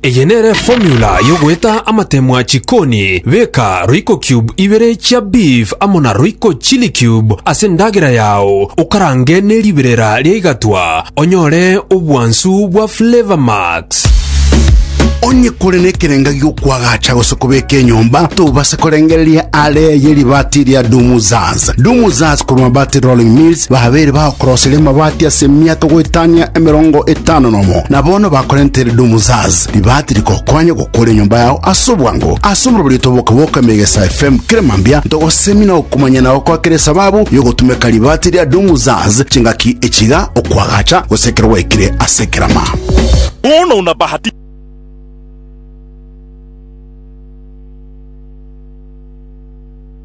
Eye nere formula yogoeta amatemwa chikoni, beka royco cube ibere chia beef amo na royco chili cube ase endagera yao, okarange ne riberera ria igatwa onyore obwansu bwa flavor max. Onye kore nekerenga gi'okwagacha gose kobeka enyomba, tobase korengereria are ye ribati ria Dumuza. Dance. Dumuzas korwa Mabati Rolling Mills babeire bagokorosire amabati ase emiaka goetania emerongo etano nomo. Na bono bakorentere Dumuzas ribati rigokonya gokora enyomba yao ase obwango. Ase omorobori oito boka-boka Megesa FM kera mambia ntogosemia na okomanya nao kwa kera esababu yogotumeka ribati ria Dumuzas chingaki echiga okwagacha gose ekero gwaikire ase ekerama. Bono una bahati.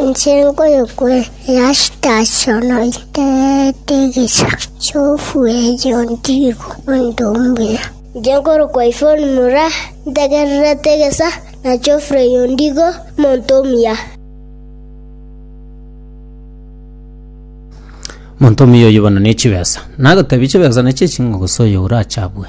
Inche nkoyokwa easitaasi ono itererete egecha, chiofu erio ontibu onde ombuya. Inche nkorokwa Ifoni mura ntegererete egecha, na chiofu erio ontibu omonto omuya. Omonto omuya oyio bono ne chibesa, nagotebi chibesa neche eching'o gose oyo orache abue.